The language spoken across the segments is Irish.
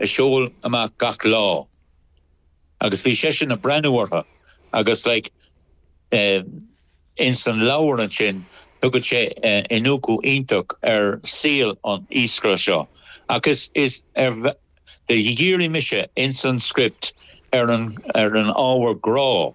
a sheol amach gach lá agus bhí seisean a' breathnú orthu agus like eh ins an leabhar ansin tugann sé iniúcadh iontach ar saol an iascaire seo ach is is ar do dhírigh mise ins an script ar an ar an ábhar grá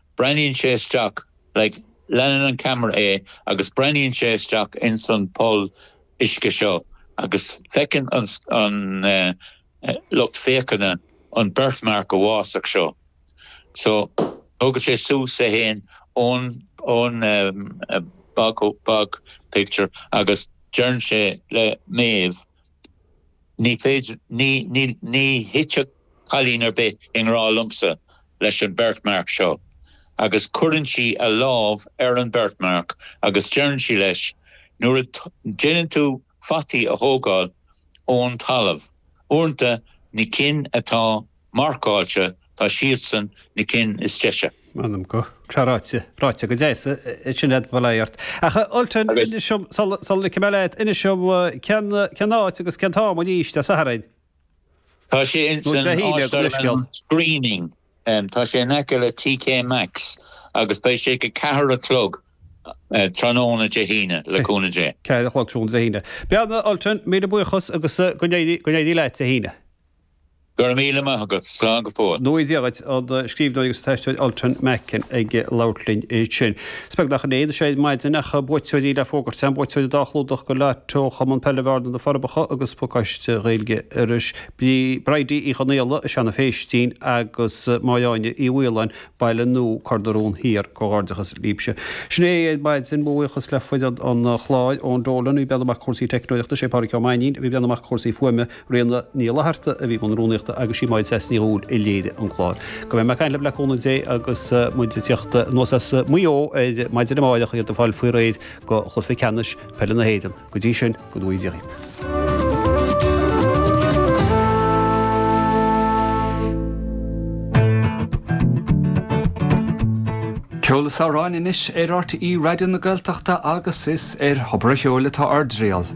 Breathnaíonn sé isteach, like, leanann an ceamara é agus breathnaíonn sé isteach ins an poll uisce seo agus feiceann an, an eh, lucht féachana an birthmark uafásach seo. So, tógann sé suas é fhéin ón, ón em, eh, bog, bog picture agus deireann sé le Maeve, Ní féidir, ní, ní, ní thitfeadh cailín ar bith i ngrá liomsa leis an birthmark seo. Agus cuireann sí a lámh ar an birthmark agus deireann sí leis, nuair a déanann tú fataí a thógáil ón talamh, uaireanta na cinn atá marcáilte, tá siadsan na cinn is deise. M'anam go. Tra ráite, ráite go deas, é sin ad bhol éirt. Ach a Ultain, inis dom, sula ligfidh mé leat, inis dom cén, cén áit agus cén t-am anois Dé Sathairn? Tá sé ins an áistearann Screening, tá sé in aice le TK Maxx agus beidh sé ag a ceathair a chlog tráthnóna Dé hAoine, le cúnamh Dé. Ceathair a chlog tráthnóna Dé hAoine. Bhuel, a Ultain, míle buíochas agus go n-éirí, go n-éirí leat Dé hAoine. Go raibh míle maith agat. Slán go fóill. Go ngnóthaí Dia dhuit, an scríbhneoir agus an t-aisteoir Ultan Macken ag labhairt linn ansin. Is beag nach in é anseo ar maidin ach buaiteoirí le fógairt, sin buaiteoirí dhá chlúdach do lotto Chumann Peile Bhearna, Na Forbacha agus Pacáiste Gaeilge Iorrais, Bridie Uí Chonaola, Seanadh Phéistín agus Máire Áine Uí Mhaoláin, Baile Nua, Cor na Rón Thiar. Comhghairdeachas libhse. Sin é é ar maidin. Mo bhuíochas le foireann an chláir, Eoin Dolan, a bhí ag breathnú amach do chúrsaí teicneolaíochta, Sé Pádraic Ó Mainnín a bhí ag breathnú amach do chúrsaí fuaime, Ríona Ní Fhlatharta a bhí i mbun rúnaíochta agus sí Máire Treasa Ní Dhubhghaill a léirigh an clár. Go mbeidh muid ag caint libh le cúnamh Dé agus muid ag tíocht anuas as Maigh Eo ar maidin amárach, iad ag fáil faoi réir do Chluiche Ceannais Peile na hÉireann. Go dtí sin, go ngnóthaí Dia. Ceol is amhráin anois ar RTÉ Raidió na Gaeltachta agus is ar Thobar a' Cheoil atá ár dtriall.